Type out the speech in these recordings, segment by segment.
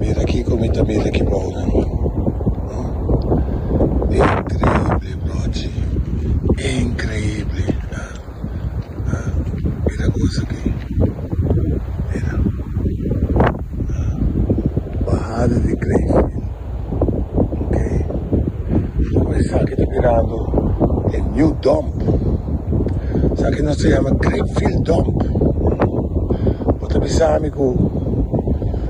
Mira kiko mi ta mira ki bou nan. Huh. Increíble brochi. Increíble. Huh. Huh. Mira cosa aki. Mira. Huh. Bajada di Greyfield. Ok. Como esaki ta birando e new dump. Esaki nos ta yama Greyfield dump. Bo ta bisa mi cu.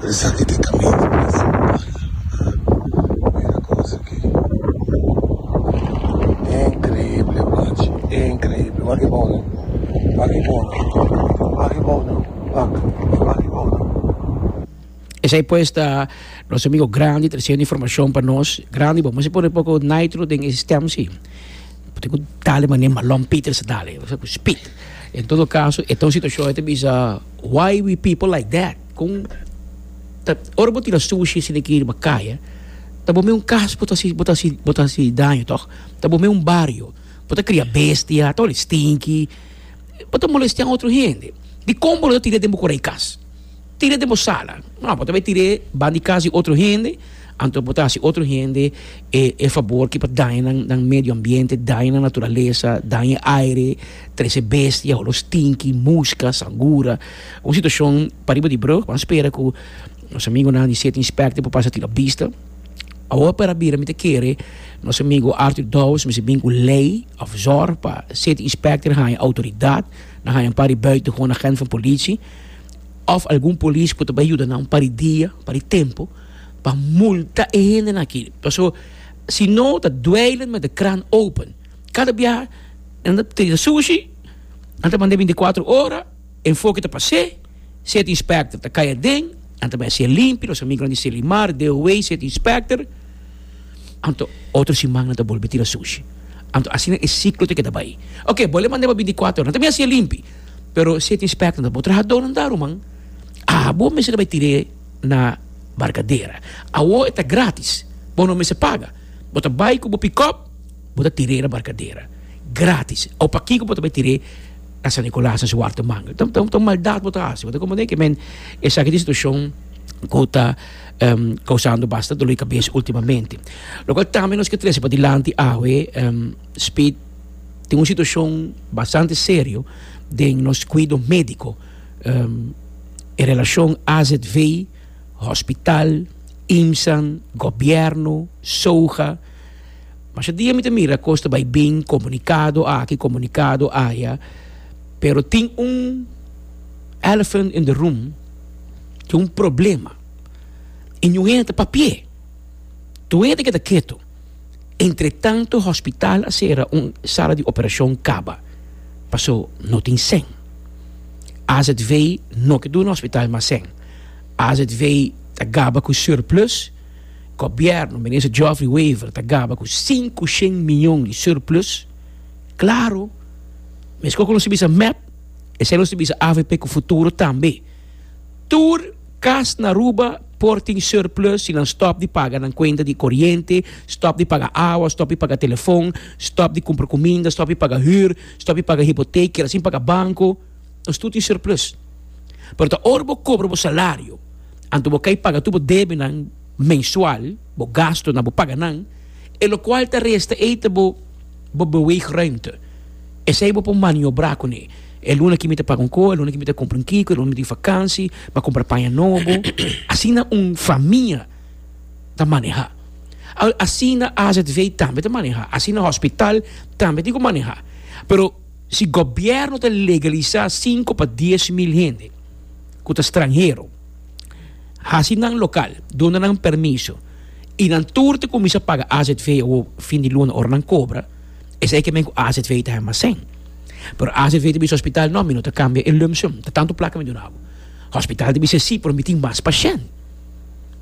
Esaki ta e caminda principal mira cosa aki increíble guachi increíble wak e bou nou wak e bou nou wak e bou nou wak wak e bou nou. Esai pues ta nos amigo Grandi treciendo informacion pa nos. Grandi bo moest pone poco nitro den e stem si. Pote cu dale mane Malon Peter sa dale cu speed. En todo caso e ta un situacion ta bisa why we people like that. Con ta ora bo tira sushi si tin ki riba caya ta bo meun cas bo ta hasi bo ta hasi bo ta hasi daño toch ta bo meun bario bo ta cria bestia ta holi stinki bo ta molestia otro hende dicon bo lo ta tira den bo cora y cas tira den bo sala no bo ta bay tira ban di cas di otro hende anto bo ta hasi otro hende e e favor ki pa daña nan nan medio ambiente daña nan naturalesa daña aire Trece bestia, holos tinki, muska, sangura. Un situacion pariba di brug. Bo a spera cu nos amigonan di City Inspector por pasa tira bista. Awo per a bira mi ta kere nos amigo Arthur Douwes mester bin cu ley of zorg pa City Inspector haya autoridad na haya un par di buitengewoon agent van politie of algun polis cu ta bay yuda nan un par di dia, un par di tempo pa multa e hendenan aki. Pasobra si no ta dweilen met de kraan open. Kada biaha nan ta trita sushi, nan ta mand'é binticuatro ora, enfoke ta pas'é, seti inspector ta cay aden, nan ta bay haci'é limpi, nos amigonan di Selimar, DOA, seti inspector, anto otro siman nan ta bolbe tira sushi, anto asina e ciclo ta keda bay. Oke, bo lo mand'é pa binticuatro ora, nan ta bay haci'é limpi, pero seti inspector nan ta bo trahador nan ta ruman, abo mester ta bay tir'é na barcadera, awo e ta gratis, bo no mester paga, bo ta bay cu bo pickup, Bo ta tir'é na barkadera gratis. Awo pakiko bo ta bai tir'é na San Nicolas na Suarto Manga? Ta ta un maldat bo ta hasi. Bo ta komprendé ke men esaki ta un situashon ku ta kousando basta doli kabes ultimamente. Lokual tambe nos ke trese pa dilanti awe Speed tin un situashon bastante serio den nos kuido médiko. E relashon azv, hospital, IMSAn, gobièrnu, SOHA. Masha dia mi ta mira cos ta bay bin, comunicado aki, comunicado aya, pero tin un elephant in the room, tin un problema, y niun hende ta papia, tur hende keda ketu, entretanto hospital a cera, un sala di operacion caba, paso no tin sèn, azv no ke duna hospital mas sèn, azv ta gaba cu surplus. Gobierno Minister Geoffrey Wever ta gaba cu sinku shen miyon di surplus, claro, mesco cu nos ta bisa mep, esey nos ta bisa avp cu futuro tambe. Tur cas na Aruba por tin surplus si nan stop di paga nan cuenta di coriente, stop di paga awa, stop di paga telefon, stop di cumpra cuminda, stop di paga huur, stop di paga hypotheek, keda sin paga banco, nos tur tin surplus. Pero ta ora bo cobra bo salario. Anto bo kai paga tur bo debenan mensual, bo gasto na bo paga nan, e lokual ta resta ei ta bo bo beweegruimte. Esei bo por maniobrá kuné. E luna ki mi ta paga un kos, e luna ki mi ta kumpra un kiko, e luna mi ta yu fakansi, mi a kumpra paña nobo. Asina un famia ta manehá. Al asina azv tambe ta manehá, asina hospital tambe tin ku manehá. Pero si gobièrnu ta legalisá sinku pa dies mil hende. ku ta stranhero hasi nan lokal duna nan permiso i nan tur ta kuminsá paga azv awo fin di luna ora nan kobra esei ke men ku azv ta hemasen pero azv ta bisa hospital no mi no ta kambia e lump sum ta tantu plaka mi duna bo hospital ta bisa si pero mi tin mas pashènt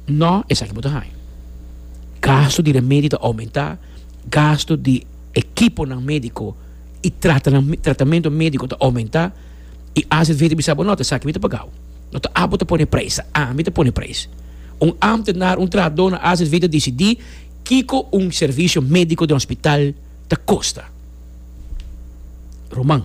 no esaki bo ta haña gastu di remedio ta oumentá gastu di ekiponan médiko i trata tratamento médiko ta oumentá. i as e vende mi sa bo no ta sa ke mi ta pagau no ta abo ta pone prijs ta ami ta pone prijs un amtenar un trahadó na as e vende disidí kiko un servisio médiko den hospital ta kosta Roman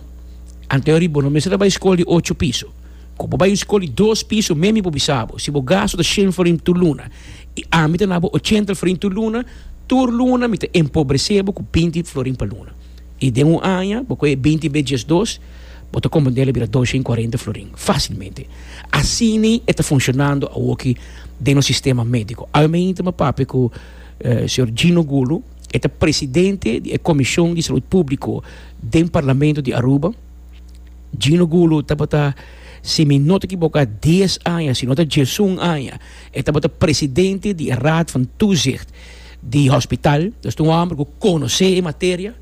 anteori bo no mester ta bai skol di ocho piso ku bo bai un skol di dos piso men mi por bisa bo si bo gasto ta shen florin tur luna i ami ta na bo ochenta florin tur luna tur luna mi ta empobresé bo ku binti florin pa luna. i den un aña bo kohe binti be djes dos bo ta komprender'e a bira dosha i kuarenta florin fasilmente. Asini e ta funshonando awoki den nos sistema médiko. Awe mi inta mi a papia ku señor Gino Gulu, e ta presidente di e komishon di salud públiko den parlamento di Aruba. Gino Gulu tabata, si mi no ta ekiboká, dies aña, si no ta djesun aña, e tabata presidente di e raad van toezicht. di hospital, nos tin un homber cu conoce e materia,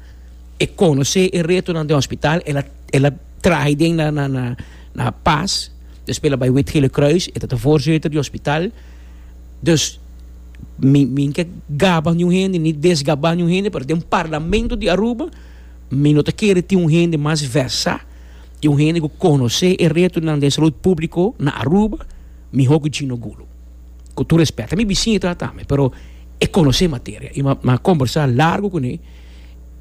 e conoce e retonan den hospital, el a el a traha aden na na na na pas, despues el a bay Wit Gele Kruis, e tabata voorzitter di hospital, dus mi mi ke gaba niun hende ni desgaba niun hende, pero den parlamento di Aruba mi no ta kere tin un hende mas versa y un hende cu conoce e retonan den salud publico na Aruba miho cu Gino Gulu. ku tur respèt. Ta mi bisiña i trata mi, pero e konosé materia. I mi a kombersá largu kuné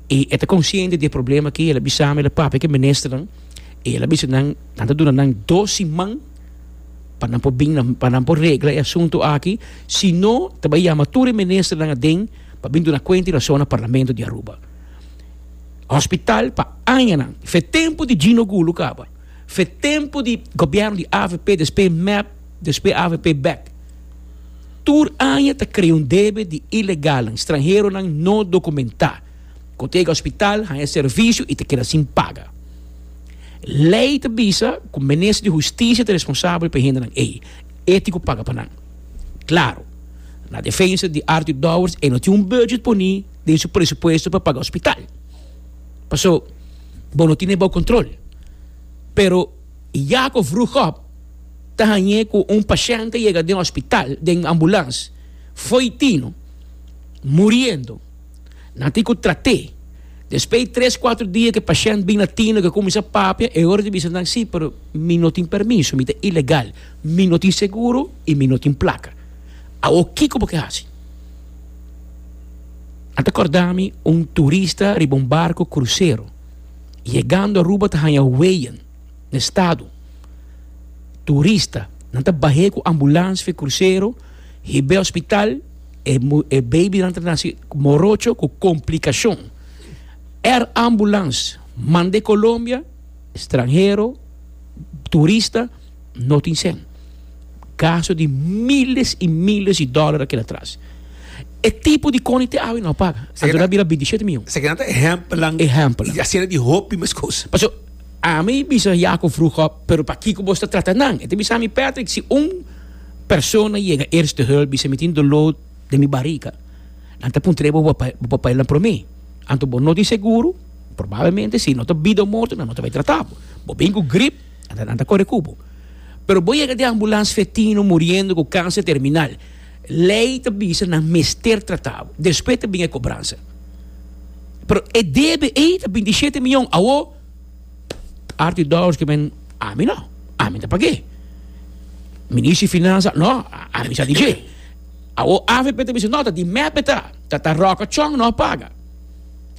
i e ta konsiente di e problema akí. El a bisa mi, el a papia ku e ministernan i el a bisa nan nan ta duna nan dos siman pa nan por bin, pa nan por regla e asuntu aki. Si no, ta bai yama tur e ministernan aden pa bin duna kuenta i rason na parlamento di Aruba. Hospital pa añanan, fe tempu di Gino Gulu kaba, fe tempu di gobièrnu di avp, despues mep. Despues avp bek. Tur aña ta krea un debe di ilegalnan, stranheronan no dokumentá, ku ta yega hospital, haña servisio i ta keda sin paga. Lei ta bisa ku Minister di Hustisia ta responsabel pa e hendenan ei. E tin ku paga pa nan. Klaru, na defensa di Arthur Dowers e no tin un budget poní den su presupuesto pa paga hospital. Paso, bo no tin e bou kontrol. Pero. I Jakob Vroegop ta hañ'é ku un pashènte yega den hospital den ambulans, fo'i tino, muriendo. Nan tin ku trat'é. Despei tres kuater dia ku e pashènt bin na tino, ku e kuminsá papia, e ora di bisa nan sí, pero mi no tin permiso, mi ta ilegal, mi no tin seguro i mi no tin plaka. Awor kiko bo ke hasi? Nan ta kòrda mi un turista riba un barko krusero. Yegando Aruba ta haña weyen na estado. Turista, nan ta bah'é ku ambulans via krusero, hib'é hospital, e e babynan ta nasi morocho ku komplikashon. Air Ambulance mand'é Colombia, stranhero, turista, no tin sen. Gasto di miles y miles di dollar aquel atras. E tipo di coni te awe no a paga. Anto na bira bintisiete mion. Esaki nan ta ehempelan. Ehempelan. Y asina di hopi mes cos. Paso ami bisa Jaco Vroegop, pero pakico bo ta trata nan? E ta bisa mi, Patrick, si un persona yega Eerste Hulp bisa mi tin dolo den mi bariga, nan ta puntra ebo bo papel nan prome. Anto bo no tin seguro, probablemente si no ta bida o morto nan no ta bay trata bo. Bo bin cu grip. Ata nan ta kore ku bo. Pero bo yega den ambulans fetino muriendo ku kanser terminal. Lei ta bisa nan mester trata bo. Despues ta bin e kobransa. Pero e debe ei ta bintisete mion. Awo Arthur di Dowers ke men, ami no, ami no ta pag'e. Minister di Finansa, no, ami sa di dje. Awo avp ta bisa, no, ta di mep e ta. Ta Roca Chong no a paga.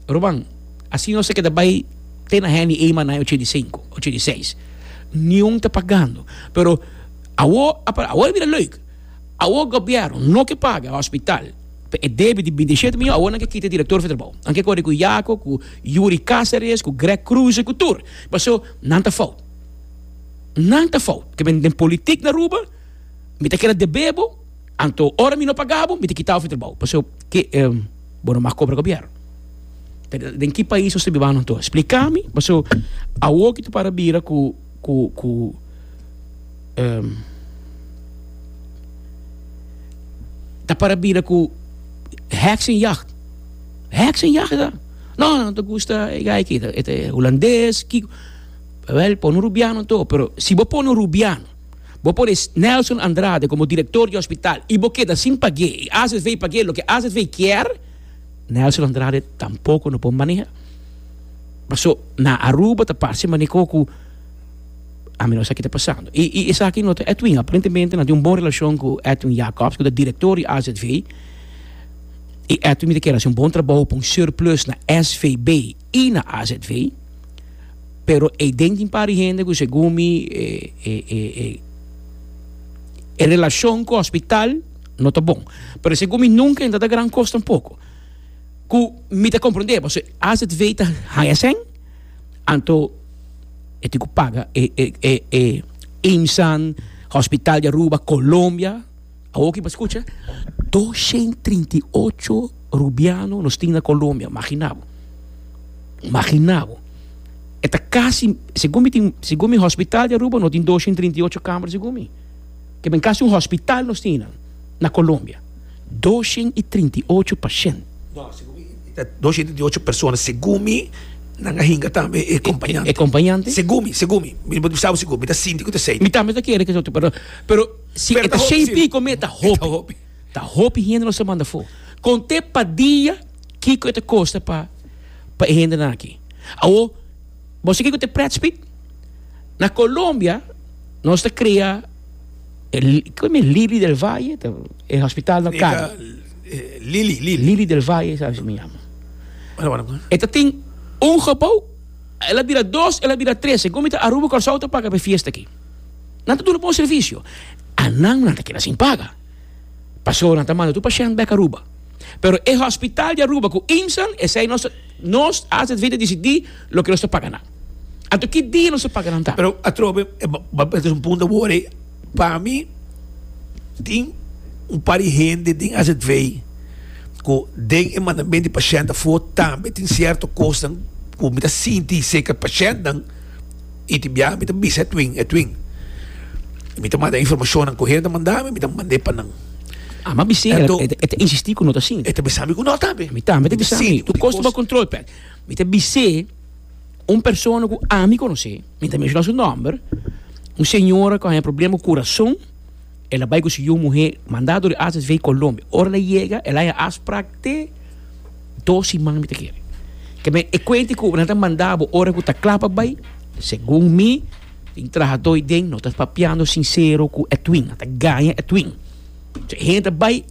Ruman, asina nos a keda bai te na hende ei manai ochenta i sinku, ochenta i seis. Niun ta pagando. Pero awor, apa, awor e bira leuk. Awor gobièrnu no ke paga hospital pa e debe di binti i shete mion, awor nan ke kita direktor for trabou. Nan ke kore ku Jaco, ku Yuri Caceres, ku Greg Croes, ku tur. Paso, nan ta fout. Nan ta fout. Te bini den politik na Aruba, mi ta keda debebo. Anto ora mi no paga bo, mi ta kita ofi trabou. Pasobra ke bo no mas kobra gobièrnu? Den ki pais nos ta biba anto? Splika mi, pasobra awor ki ta para bira ku ku ku ta para bira ku heksenjacht. Heksenjacht sa? No, no ta gusta e gai aki, e ta hulandes, kiko. Wèl, pone un rubiano anto, pero si bo pone un rubiano. Bo pone Nelson Andrade como director di hospital y bo keda sin pag'é y AZV pag'é loke AZV kier, Nelson Andrade tampoco no por maneha. Paso na Aruba ta parce manico cu a menos aki ta pasando. Y, y esaki no ta Edwin, aparentemente nan tin un bon relacion cu Edwin Jacobs cu ta director di AZV y Edwin mi ta kier haci un bon traboho pa un surplus na SVB. i na azv, pero ei den tin par di hende ku segun mi e relashon ku hospital no ta bon, pero segun mi nunka e no ta gran kos tampoko, ku mi ta komprendé paso e azv ta haña sèn anto e tin ku paga e imsan, hospital di Aruba, Colombia. A hoki pa skucha, doshent trinta i ocho rubiano nos tin na Colombia, magina bo, magina bo, e ta casi, segun mi tin, segun mi hospital di Aruba no tin doshent trinta i ocho camera segun mi, ke men casi un hospital nos tin nan na Colombia, doshent i trinta i ocho pashent. No, segun mi e ta doshent i trinta i ocho persona, segun mi nan a hinga tambe e kompañante, e kompañante, segun mi, segun mi, mi no por di sa bo segun, mi ta sinti ku ta asei. Mi tambe ta kere ku ta asei, pero, pero. Si e ta shei pico mi e ta hopi. Ta hopi hende nos a manda fo. Con te pa dia kico e ta costa pa pa e hendenan aki. Awor bo sa kico ta e pret speed? Na Colombia nos ta crea kico mi e Lili del Valle ta e hospital na Cali. Lili Lili. Lili del Valle sa asina mi yama. E ta tin un gebou el a bira dos el a bira tres segun mi ta Aruba Curaçao ta paga pa e fiesta aki. Nan ta duna bon servisio. Anan nan ta keda sin paga. Paso nan ta manda tur pashènt bèk Aruba. Pero e hòspital di Aruba ku IMSAn, esei nos ta, nos asv ta disidí loke nos ta paga nan. Anto ki dia nos ta paga nan ta? Pero atrobe, e papia ta hasi un punta wor ei. Pa mi, tin un par di hende den asv ku den e mandamento di pashènt afó tambe tin sierto kosnan ku mi ta sinti serka di pashèntnan. Y tin biaha mi ta bisa e twin, e twin, y mi ta manda e informacionnan cu hende a manda mi, mi ta mand'e pa nan. Ama bis'é, el ta, el ta insisti cu no ta sinti. E ta bisa mi cu no ta be. Mi tambe ta bisa mi, tu kosta bo control pa el. Mi ta bis'é un persona cu ami conoce, mi ta menciona su nomber, un señora cu a haña problema cu curason, El a bai ku su yu muhé mandado di HSV Colombia. Ora el a yega, el a haña afsprak te dos siman mi ta kere. Ke men e kuenti ku nan ta manda bo ora ku ta kla pa bai, segun mi, tin trahadó ei den, no ta papiando sinsero ku Edwin, nan ta gaña Edwin. So e hende ta bai,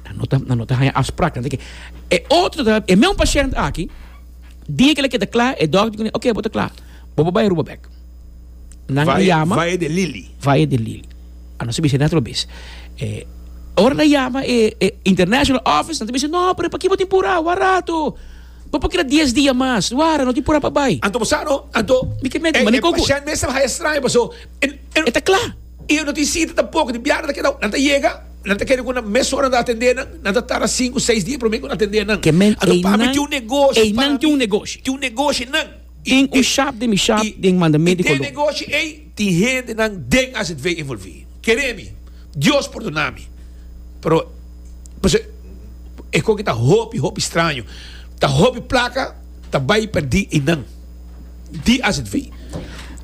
nan no ta, nan no ta haña afsprak, nan ta ke. E otro ta, e meun pashènt aki, dia ku el a keda kla, e dòkter a di kuné, Oké, bo ta kla, bo por bai Aruba bèk. Nan Valle, yama Valle de Lili. Valle de Lili. Ano se bisa otro bes. Eh, ora nan yama e, e international office, nan ta bisa, no, pero paki bo tin pura, wak rato. Bo por keda dies dia mas. Wara, no tin pura pa bai. Anto bo sa no, anto, Mi ke menti, e, mani e koko. pashènt mes ta bahaya straño, paso, e, e, E ta kla. i no tin sita tampok, di biaha nan ta keda, nan ta yega, nan ta kere ku nan mes ora nan ta atendé nan, nan ta tarda sinku, seis dia promé ku nan atendé nan. Ke menti, Anto, ei pami nan, tin un negoshi, ei nan tin un pami, negoshi. tin un negoshi nan. Tin un shab den mi shab den mandament di Colón. I den negoshi ey tin hendenan den azv envolvi. Kere mi, Dios pordona mi, pero pasobra e koki ta hopi hopi straño, ta hopi plaka ta bay perdi eynan di azv.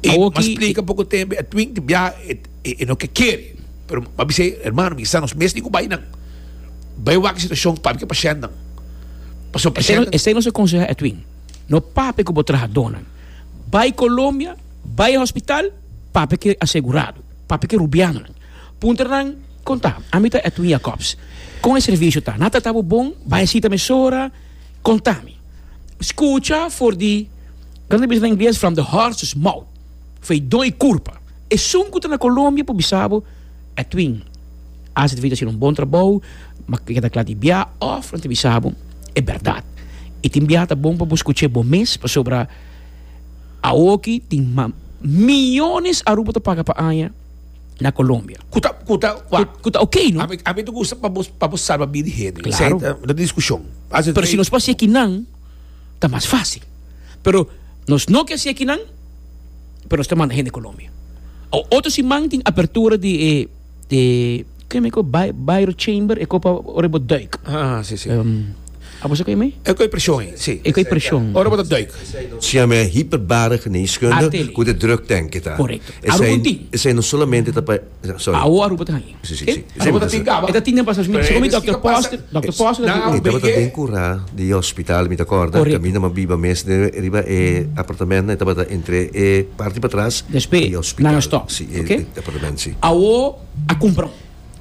E mas splica poco tembe a twing di biaha e no ke kere, pero mi a bisa ey, Hermano, mi sa nos mes tin cu bay nan, bay wak e situacion, papia pa shendnan, pasobra pa shendnan. Esei nos a conseha a twing. No papia cu bo trahadónan. Bai Colombia, bai hospital, papia cu e asegurado, papia cu e rubiannan. Puntra nan, Con ta? Ami ta Edwin Jacobs. Con e servicio ta? Nan a trata bo bon? Bai a cita mesora? Conta mi. Scucha for di, como ta bisa na Ingles, from the horse's mouth, fei don y curpa. Esun cu ta na Colombia por bisa bo. Edwin, Ase ta fita haciendo un bon trabou, ma keda kla di bia of nan ta bisa bo e berdad. Y tin bia ta bon pa bo scucha bo mes, pasobra awoki tin millones Aruba ta paga pa aña na Colombia. Cu ta, cu ta, cu cu ta ok, no? Ami, ami ta gusta pa bo, pa bo salba bida e hende. Esei Claro. ta, no ta discusion. Ase Pero si nos por haci kinan, ta mas fácil. Pero nos no ke haci e kinan. pero nos ta manda hende Colombia. Awor otro siman tin apertura di e e kue mi ko Bai- Bairro Chamber e ko pa ora bo duik. Ah, sí, sí. Em, a boso kue mi? E kue presión ei, sí. E kue presión. Ora bo ta duik. Se yama e hyperbare geneeskunde Artele. ku de druktanke ta. Correcto. Esei, Arukunti. esei no solamente ta pa Awor bo ta haña. Ora bo ta tin kaba. E ta tin den pastor. Mi ta sico mi Dokter Poster. Dokter Poster ta di un. E tabata den cura di e hospital mi ta corda. Caminda mi a biba mes den riba e apartamento. E tabata entre e parti patras di e hospital. Nan a stop. Si e apartamento si. Awor a cumpra un.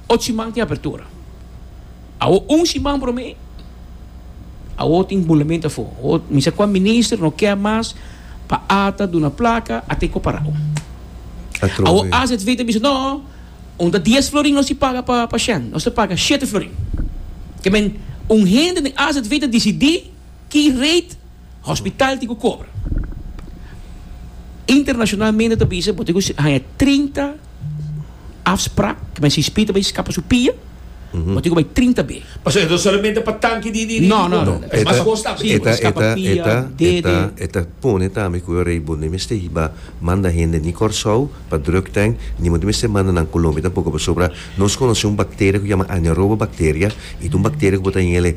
Ochi man tin apertura. Awo un siman promé, awo tin bulament afó. Awo misa kua minister no kè mas pa ata duna plaka a tei kua pará. Awo azv ta bisa no, un ta dies florin nos di paga pa pa shen, nos ta paga shete florin. Ke men un hende den azv ta disidí. Ki rate hospital tin ku kobra? Internashonalmente ta bisa bo tin ku haña trinta afsprak, ki men CSP ta bai skapa su pia, bo tin ku bai trinta be. Pasobra e ta solamente pa tanki di di kobra. No, e mas kos ta. Si, bo ta skapa pia, dede. E ta pone tambe ku e rei bo ni mester hiba manda hende ni Kòrsou pa drug tènk, ni bo ni mester manda nan Kolombia tampoco, pasobra nos konosé un bakteria ku yama Anaeroba bakteria, i ta un bakteria ku bo ta hinga el e.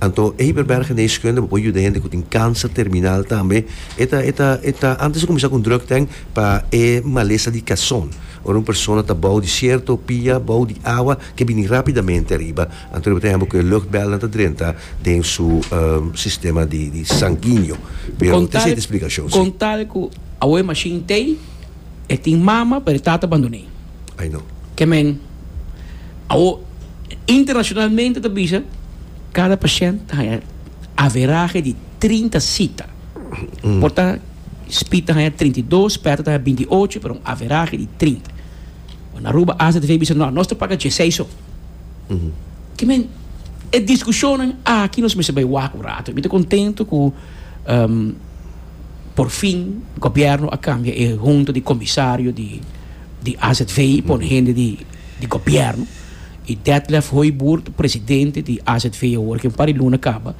Anto Eberberg Geneeskunde bo por yuda hende ku tin kanser terminal tambe. E ta e ta e ta antes di kuminsá ku un drug tank pa e malesa di kason. Ora un persona ta bou di sierto pia bou di awa ke bini rápidamente ariba anto di bo ta hèmber ku e luchtbèlnan ta drenta den su sistema di sanginio. Pero te esei ta splikashon si. Con tal cu awor e machine t'ei. E tin mama pero e tata a bandoné. Ay no. Ke men awo internacionalmente ta bisa cada pashènt ta haña averahe di trinta sita. Por ta Speed ta haña trinta i dos, Pèter ta haña binti i ocho pero un averahe di trinta. Ora na Aruba AZV bisa no nos ta paga dieseis so. Ke men e diskushonnan aki nos mester bai wak un rato. Mi ta kontentu ku. Por fin gobièrnu a kambia e hunta di komisario di di azv i pone hende di di gobièrnu i Detlef Hooiboert presidente di azv awor ke un par di luna kaba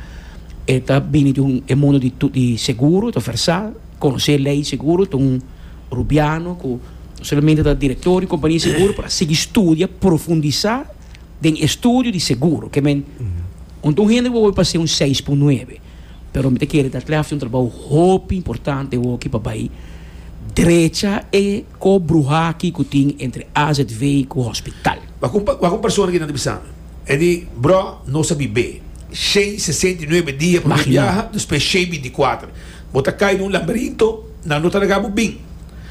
e ta bini di un e mundo di di seguro e ta versá konosé lei seguro ta un rubiano ku no solamente ta direktor di un kompania di seguro pero a sigui studia profundisá den e studio di seguro ke men un ta un hende ku a wòrdu pa ser un seis pun nuebe. Pero mi ta kere ta tref un trabou hopi importante woki pa bai drecha e kop bruhá aki ku tin entre AZV ku hospital. Wak un wak un persona ki ta di bisa mi, e di, Brò, nos a bib'é shei sesenta i nuebe dia pa nos biaha, despues shei binti i kuater. Bo ta kai den un lamberinto, nan no ta laga bo bin.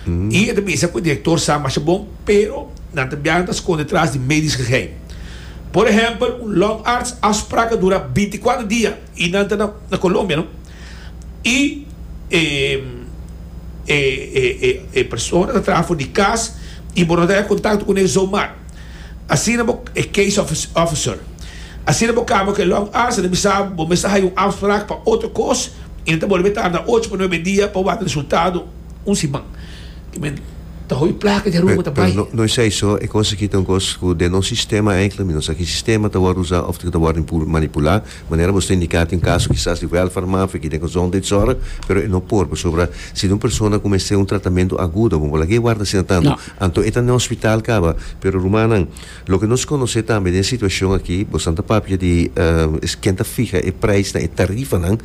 I e ta bisa ku e direktor sa masha bon, pero nan ta biaha nan ta skonde tras di medisch geheim. Por ehèmpel, un lòngarts afsprak a dura binti i kuater dia. Y nan ta na Colombia no. Y e persona ta traha for di cas y bo no ta haña contacto cu ne zomar. Asina bo, e case officer, asina bo cambia cu e long hours, e ta bisa bo mes ta haña un afspraak pa otro cos y nan ta bolbe tarda ocho pa nuebe dia pa wak resultado un siman. Ki men ta hopi placa di Aruba ta bay. Pero no es eso, e cos aki ta un cos cu den nos sistema, enkele mi no sa ki sistema ta wordo usa of ta wordo manipula. Manera nos ta indiká tin kaso kisas di wèlfer mafe ki den gezondheidszorg, pero e no por pasobra si di un persona ku mester un tratamentu agudo bo bo lag'é warda asina tantu, anto e ta n'e hospital kaba. Pero rumannan, loke nos konosé tambe den e situashon akí, bosnan ta papia di ken ta fiha e preisnan, e tarifanan,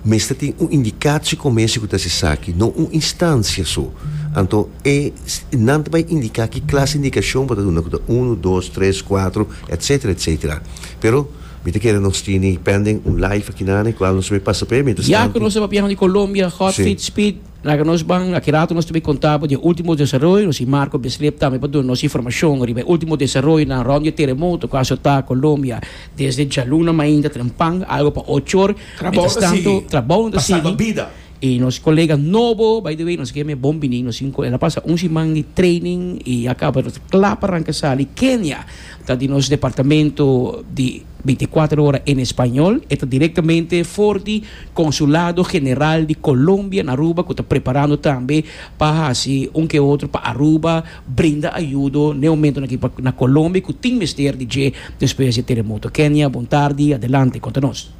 mester tin un indikatio komersio ku ta hasi esaki, no un instansia so. Anto e nan ta bai indiká ki klas di indikashon bo ta duna ku ta unu, dos, tres, kuatro, etsetera, etsetera. Pero. Mi ta kere nos tini pending un live akinane e kual nos me pasa p'e. Mientras tantu. Ya ku nos ta papia di Colombia, hot feet, Si. speed, na ke nos ban, aki rato nos ta bai konta bo di e ultimo desaroyo, nos tin Marco Besleb tambe pa duna nos informashon riba e ultimo desaroyonan rond di e teremoto ku a asota Colombia desde djaluna mainta trempan, algo pa ochor. Trabounan ta sigui. Mientras tantu, trabounan ta sigui. Pa salba bida. Y nos colega nobo, by the way, nos keme bon bini, nos cinco. El a pasa un siman di training y a caba, nos ta cla pa ranca sali. Kenia ta di nos departamento di binticuatro ora en Español. E ta directamente for di Consulado General di Colombia na Aruba, cu ta preparando tambe pa haci un ke otro pa Aruba, brinda ayudo n'e momentonan aki pa na Colombia cu tin mester di dje despues di e teremoto. Kenia, bon tardi, adelante conta nos.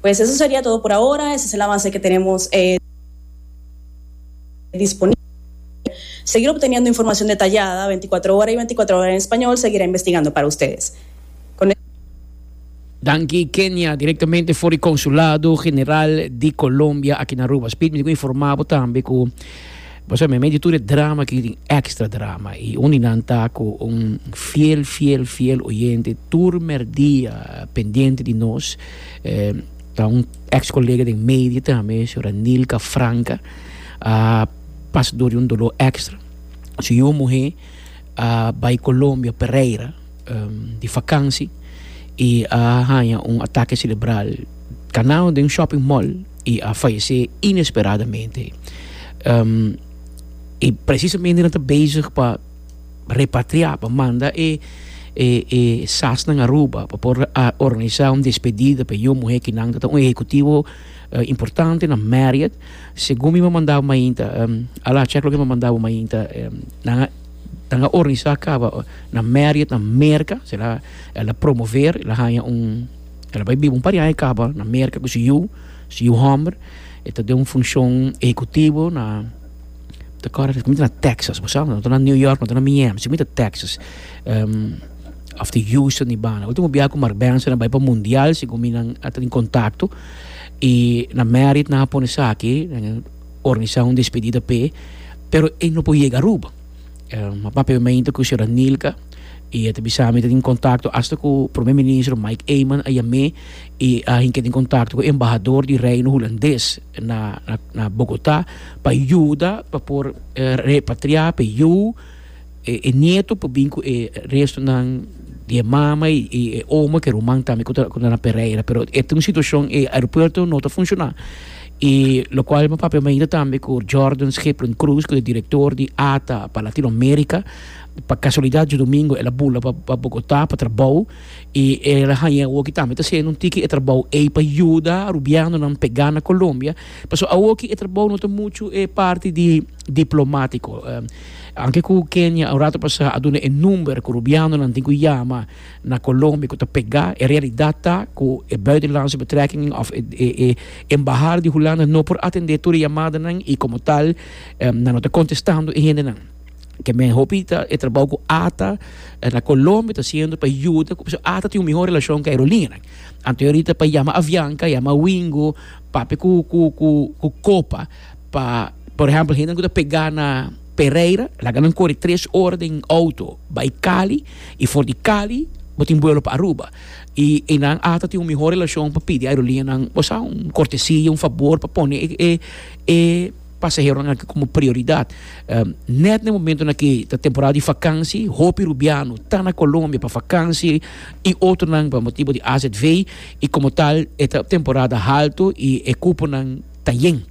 Pues eso seria todo por ahora, esas e lamanse ke tenemos disponible. Seguir obteniendo informacion detallada veinticuatro hora y veinticuatro hora en español seguira investigando para ustedes. Con. Danki Kenia, direktamente for di Konsulado General di Colombia aki na Aruba. Speed mi tin ku informá bo tambe ku. Bo sa, mi medio tur e drama aki tin extra drama i un di nan ta ku un fiel, fiel, fiel oyente tur merdia pendiente di nos, ta un ex kolega den media tambe, señora Nilka Franca, a pasa dor di un dolor extra, su yu muhé a bai Colombia, Pereira, di fakansi i a haña un atake serebral kanal den un shopping mall. I a fayesé inesperadamente. I presisamente nan ta bezig pa repatriá, pa manda e sasnan Aruba pa por organisá un despedida pa e yu muhé kinan ta un ehekutivo importante na Marriott. Segun mi mamanda bo mainta, a la chèk loke mi mamanda bo mainta, nan a nan a organisá kaba na Marriott na Merka, sera el a promover, el a haña un. El a bai biba un par di aña kaba na Merka ku su yu, su yu hòmber. E ta den un funshon ehekutivo na, mi ta kòrda sigimente na Tèksas, bo sa, no ta na New York, no ta na Miami, sigimente na Tèksas, òf di Houston di banda. Ultimo biaha ku Marbenzo a bai pa mundial, segun mi nan a tene kontakto, i na Merit nan a pone esaki, nan a organisá un despedida p'e, pero e no por yega Aruba. Um, a papia mente ku señora Nilka i e ta bisa mi ta tin kontakto hasta ku Prome Ministro Mike Eman a yam'é i a hinka tin kontakto ku Embahador di Reino Hulandes na na Bogotá pa yuda pa por repatriá pa e yu e nieto por bin ku e restonan di e mama i e oma ku e ruman tambe ku ta ku ta na Pereira pero e ta un situashon e aeropuerto no ta funshoná. I lokual mi papia mainta tambe ku Jordan Schiplen Cruz, ku ta e direktor di ata pa Latinoamérika. Pa kasualidat yu domingo el a bula pa Bogotá pa trabou i el a haña awoki tambe ta hasiendo un tiki e trabou ei pa yuda rubianonan pegá na Colombia. Pasobra awoki e trabou no ta muchu e parti di diplomático. Anke ku Kenia un ratu pasá a duna e number ku rubianonan tin ku yama. na Colombia cu ta pega. E realidad ta cu e Buitenlandse Betrekkingen of e Embahada di Hulanda no por atende tur e yamadanan y como tal nan no ta contestando e hendenan. Ke men hopi ta e trabou cu ata na Colombia ta haciendo pa yuda cu pasobra ata tin un mihor relacion cu e aerolineanan. Anto e ahorita pa yama Avianca, yama Wingo, papia cu Copa. Pa por ehempel hende ku ta pegá na Pereira laga nan kore tres ora den outo bai Cali i for di Cali bo tin buelo pa Aruba i e nan a ta tin un mihó relashon pa pidi aerolineanan bo sa un kortesia un fabor pa pone e e pasaheronan aki komo prioridat nèt na e momentonan aki ta temporada di fakansi hopi rubiano ta na Colombia pa fakansi i otronan pa motibu di azv i komo tal e ta temporada halto i e kuponan Ta yen.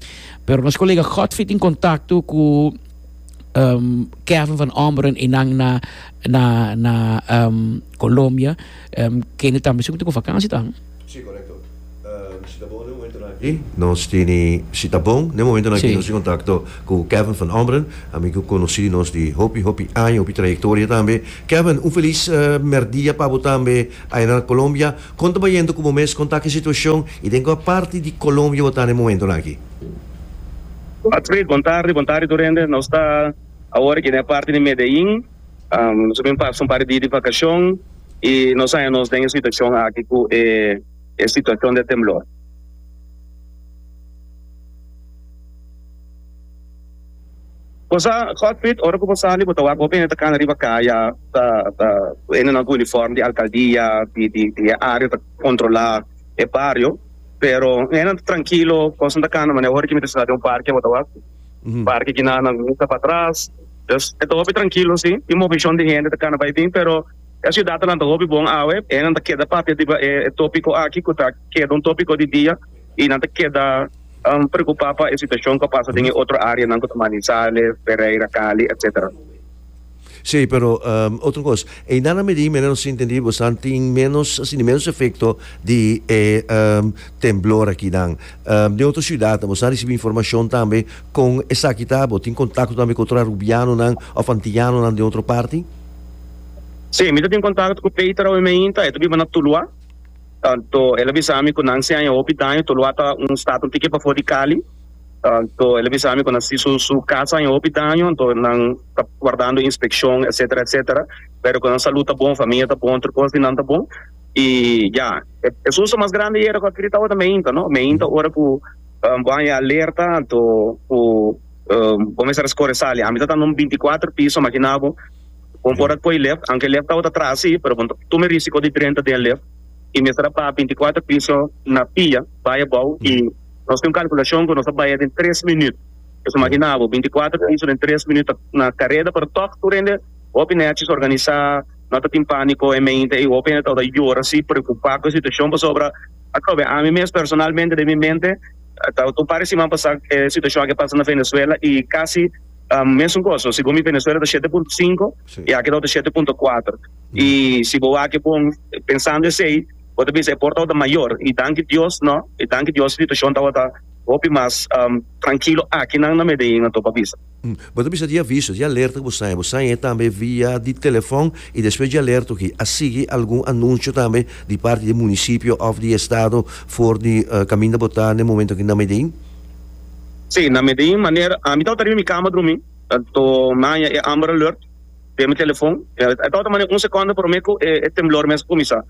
Pero nos colega Godfrey tin contacto cu um, Kevin van Omberen y nan na, na, na um, Colombia. Um, kende tambe su cu tin cu vakantie ta. Si, corecto. Um, si ta bon den momento nan aki, nos tini, si ta bon den momento nan aki, Si. nos tin contacto cu Kevin van Omberen, amigo conoci nos di hopi, hopi aña, hopi trayectoria tambe. Kevin, un feliz, uh, merdia pa bo tambe, aya na Colombia. Kon ta bayendo ku bo mes? Kon ta aki situashon i den kua parti di Colombia bo ta na e momentunan aki? Patsy, Bon tardi, bon tardi tur hende. Nos ta awor aki den e parti di Medellin. Nos a bin pasa un par di dia di vakashon i nos haña nos den e situashon aki ku e situashon di e temblor. Bo sa Godfrid ora ku bo sali bo ta wak hopi hende ta kana riba kaya ta ta ku hende nan ku uniform di alkaldia di di di e área ta kontrolá e bario pero hendenan ta trankilo kosnan ta kana manera ora ki mi ta sinta den un parke bo ta wak parke kina nan misa pa atras dus e ta hopi trankilo si tin movishon di hende ta kana bai bin pero e siudat anan ta hopi bon awe hendenan ta keda papia riba e e topiko aki ku ta keda un topiko di dia. y nan ta keda preocupa pa e situacion cu a pasa den e otro areanan cu ta Manizales, Pereira, Cali, etc. Si, pero otro cos, eindá nan medi menen nos intendí bo estan tin menos, asina menos efecto di e temblor aki nan. Den otro ciudadnan bo estan ricibi informacion tambe con esaki ta? Bo tin contacto tambe cu otro Arubianonan of Antillanonan den otro parti? Si, mi ta tin contacto cu Peter awe meinta, e ta biba na Tulua. Anto el a bisa mi ku nan si haña hopi daño, Toloa ta un stat un tiki pafó di Cali. Anto el a bisa mi ku nan si su su kas a haña hopi daño, anto nan ta wardando inspekshon etsetera etsetera, pero ku nan salud ta bon, famia ta bon, tur kos di nan ta bon. I ya, e e susto mas grandi yera ku a kiri tabata meinta, no. Meinta ora ku bo a haña alerta anto ku bo mester a skore sali. Ami tabata na un binti kuater piso, imaginá bo. Bon por a koe lift, aunke lift tabata traha si, pero bon ta tuma e risiko di drenta den lift y mester a baha binticuatro piso na pia bai abou y nos tin un calculacion cu nos a baya den tres minuut. Pues imagina abo, binticuatro piso den tres minuut ta na careda pero tog tur hende, hopi nechis, organisa, no ta tin panico e mente y hopi hende tabata yora si, preocupa cu e situacion pasobra ata awe ami mes personalmente den mi mente tabata un par di siman pasa e situacion aki a pasa na Venezuela y casi Mesun cos so si bo mi Venezuela ta shete punto cinco y aki tawata shete punto cuatro y si bo wak e bon pensando esey bo ta bisa e por tawata mayor y danki Dios no y danki Dios e situacion tawata hopi mas trankilo akinan na Medellin a topa bisa. Bo ta bisa di aviso di alerta ku bo saña bo saña e tambe via di telefon y despues di alerta oki a sigui algun anuncio tambe di parti di e municipio of di estado for di kaminda bo ta na e momento aki na Medellin? Sí, na Medellín maner ami tabata riba mi cama drumi to naña e Amber Alert den mi telefon e tabata maner un secondo prome cu e e temblor mester cuminsa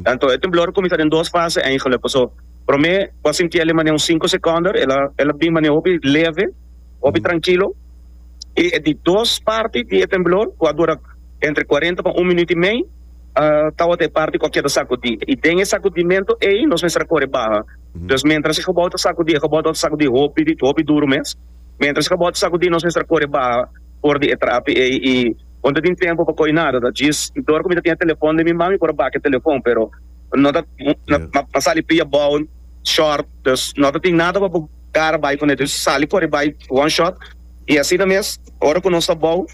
anto e temblor a cuminsa den dos fase ahí gelukkig so prome cu a sinti ele maner un cinco seconder ela ela bin maner hopi leve hopi trankilo y e di dos parti di e temblor cu a dura entre cuarenta pa un minuut y mei a tabata e parti cu a keda sacudi y den e sacudimento ey nos mester a corre baha Pues mientras e gebou ta sakudi, e gebou tabata sakudi hopi di hopi duru mes. Mientras e gebou ta sakudi nos mester a kore baha for di e trapi ei y bo no ta tin tempo pa koy nada, ta djis dor cu mi ta tin e telefon den mi man mi por a bak e telefon pero no ta a sali pia bou short pues no ta tin nada pa bo kara bay cune djis sali kore bay one shot y asina mes ora cu nos ta bou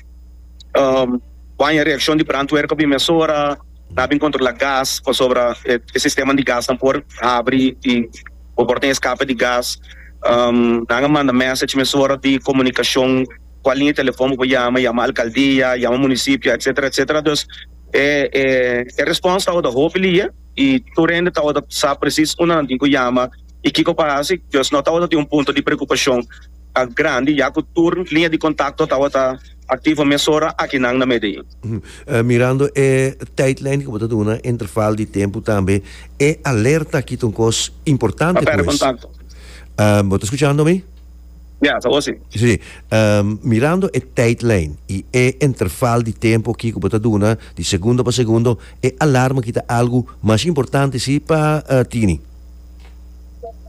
baña reaccion di brandweer ta bin mesora. Ta bin kontrola gas pasobra e sisteman di gasnan por habri i bo por tin eskape di gas. Nan a manda message mesora di komunikashon kual liña di telefon bo por yama, yama alkaldia, yama munisipio etsetera etsetera. Dus e e respons tabata hopi liye i tur hende tabata sa presis unda nan tin ku yama i kiko pa hasi. Dus no tabata tin un punto di preokupashon grandi ya ku tur liña di kontakto tabata aktivo mesora aki nan na Medellin. Mirando e tijdlijn ku bo ta duna, interval di tempu tambe, e alerta aki ta un kos importante ku es. Bo ta skuchando mi? Ya, ta osi. Si. Mirando e tijdlijn i e interval di tempu aki ku bo ta duna, di segundo pa segundo, e alarma aki ta algu mas importante si pa tini?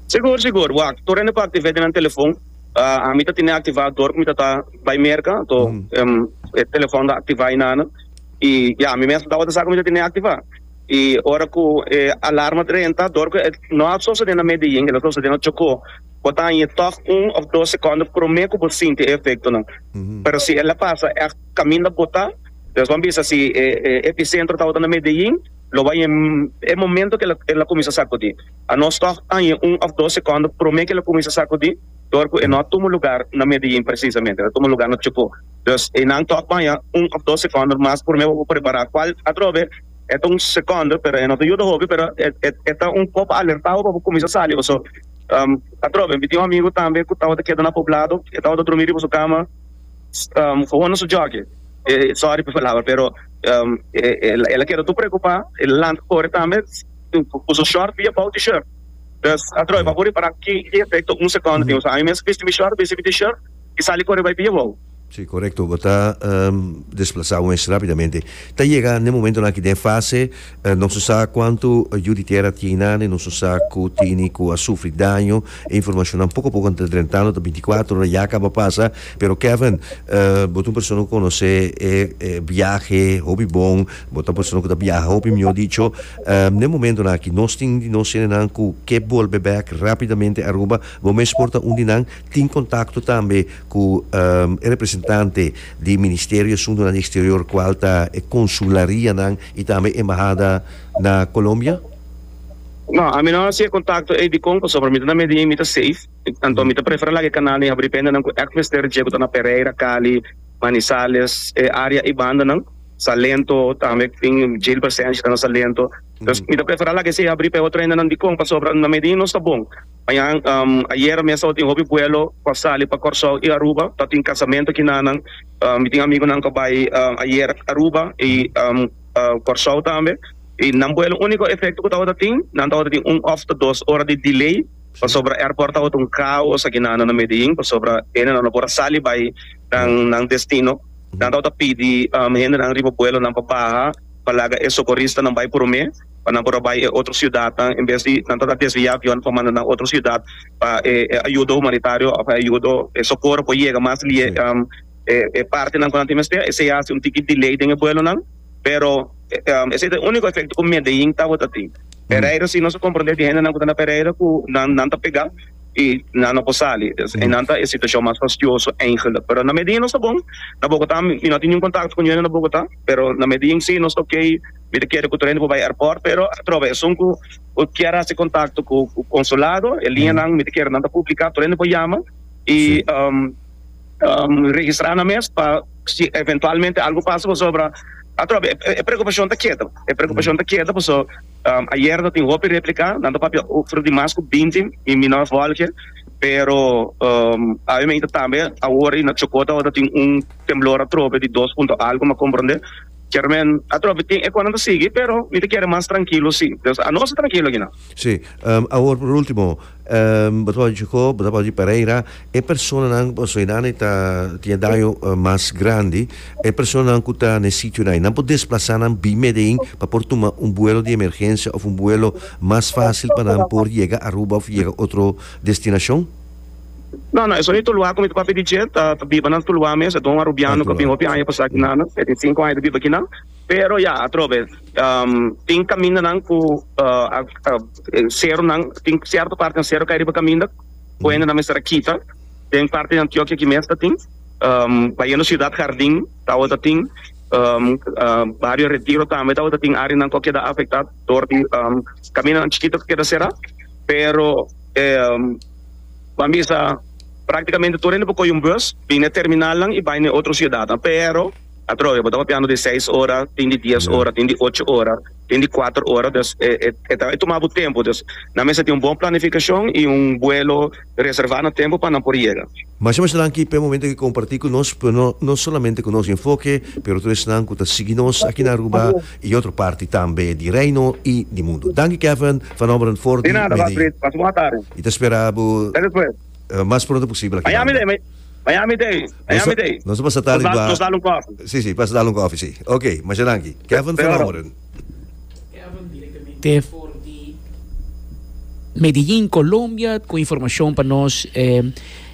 Sigur, sigur. Wak, tur hende por aktiv'é den nan telefon. Ami ta tene aktivá dor ku mi tata. Bai merka to e telefòn ta aktivá i nana i ya mi mes tawata sa kuminsá tene aktivá i ora ku e alarma ta renta dor ku e no a sosodé na Medellín el a sosodé na Chocó bo ta haña tòg un òf dos sekònda promé ku bo sinti e efektonan pero si el a pasa ègt kaminda botá nos ban bisa si e episentro tawata na Medellín lo bai e momento ku el a kuminsá sakudí a nos tòg ta haña un òf dos sekònda promé ku el a kuminsá sakudí. dor cu e no a tumu lugar na Medellin precisamente, e ta tumu lugar na Chocó. Dus e nan tok baña un of dos seconder mas purme bo bo prepara cual atrobe e ta un seconder pero e no ta yuda hopi pero e e e ta un poco alertado pa bo cuminsa sali paso um atrobe mi tin un amigo tambe cu tabata keda na Poblado e tabata drumi riba su cama um hoho na su jockey e sorry pa palabra pero um e e el a keda tur preocupa e lanta cori tambe cu su short y e bou T-shirt. Dous a droi, bo a por repará ki e efekto un sekònda tin. Osaña mes bisti mi shòrt, bisti mi t-shirt i sali kore bai pia wou. Sí, korekto. Bo ta desplasá wens rápidamente. Ta yega na e momentonan aki den e fase, nos no sa kuantu yu di tera tin na, ni nos no sa ku tini ku a sufri daño. E informashonnan poko a poko a ta drentando, ta binticuatro ora ya kaba pasa. Pero Kevin, bo ta un persona ku konosé e biahe hopi bon. Bo ta persona ku ta biaha hopi mihó dicho. Den momentonan aki nos tin un di nos senenan ku ke bolbe bèk rápidamente Aruba. Bo mes por ta un di nan. Tin kontakto tambe ku e representante di Ministerio di Asuntonan di Eksterior kual ta e konsularianan i tambe embahada na Colombia? No, ami no hasi e kontakto ei dikon pasobra por mi ta na Medin mi ta safe. Anto mi ta prefera laga e kanal den habri bendanan ku èkt mester dje ku ta na Pereira, Cali, Manizales, e área ei bandanan. Salento tambe cu tin Jail Presencia ta na Salento. Entonces mi ta prefera la kese abri pa e otro hendenan Dicon pasobra na Medin nos ta bon. Mañan ayera mes tabatin hopi vuelo pa sali pa Corsou y Aruba ta tin casamento kinanan. Mi tin amigonan cu a bay ayer Aruba y Corsou tambe y nan vuelo unico efecto cu tabata tin nan tabata tin un of ta dos ora di delay pasobra airport tabata un caos aki nan na Medin pasobra hendenan no por a sali bay nan destino. Nan tau ta pidi hendenan riba buelonan pa baha pa laga e sokoristanan bai promé pa nan por a bai e otro siudatnan en bes di nan ta desviá avionnan pa manda nan otro siudat pa e ayudo humanitario òf e ayudo e sokoro por yega mas lié e partenan ku nan tin mester. Esei a hasi un tiki delay den e buelonan pero esei ta e úniko efekto ku Medellín tabata tin. Pereira si nos a komprondé di hendenan ku ta na Pereira ku nan ta pegá. y nan no por sali eynan ta e situacion mas fastioso eigenlijk pero na medie nos ta bon na Bogota mi no tin niun contacto cu niun na Bogota pero na medie in si nos ta ok mi ta kere cu tur hende por bay airport pero atrobe esun cu kier haci contacto cu consulado e lineanan mi ta kere nan ta publica tur hende por yama y registra nan mes pa si eventualmente algo pasa pasobra atrobe e preocupacion ta keda e preocupacion ta keda paso. Ayer ta tin hopi replica, nan ta papia over di mas cu binti mi minor volge, pero obviamente tambe awor y na Chocó ta tin un temblor atrobe di dos punto algo, mi a comprende kier men atrobe tin e con nan ta sigui pero mi ta kere mas trankilo si, nos a tranquilo aki nan. Si, awor por ultimo. Bo ta wòrdu chikó, bo ta wòrdu di Pereira, e personanan, bo so einan e ta tin e daño mas grandi, e personanan ku ta na e sitionan, einan por desplasá nan bim Medellín pa por tuma un buelo di emergensia òf un buelo mas fásil pa nan por yega Aruba òf yega otro destinashon? No, no, e sonido Tuluá ku mi ta papia di dje ta biba na Tuluá mes, e ta un arubiano ku a bini hopi aña pasá aki nan, e tin sinku aña ta biba aki nan, pero ya atrobe tin kamindanan ku a. Seronan, tin sierto parti nan sero kai riba caminda, puente nan mester a kita, den parti di Antioquia aki mes ta tin, bayendo Ciudad Jardin tawe ta tin, Barrio Retiro tambe tawe ta tin areanan cu a keda afecta dor di camindanan chikito cu keda cera, pero ban bisa practicamente tur hende por coge un bus bini na e terminalnan y bai na e otro ciudadnan, pero atrobe bo ta papiando di seis ora, tin di dies ora, tin di ocho ora. Den di kuater ora, dus e ta tumá bo tempu. Dus nan mester tin un bon planifikashon i un buelo reservá na tempu pa nan por yega. Masha masha danki pa e momento ku e kompartí ku nos, pero no solamente ku nos enfoke, pero tur esnan ku ta sigui nos aki na Aruba i otro parti tambe di Reino i di mundu. Danki Kevin, Van Ommeren for di media. I ta spera bo. Lo mas pronto posible aki Miami Dade, Miami Miami Dade, Miami Dade. Nos a pasa tardi pa... Nos dal un koffie. Si, si, pasa dal un koffie, si. Ok, masha danki. Kevin van Ommeren. Kevin directamente for di Medellin Colombia cu informacion pa nos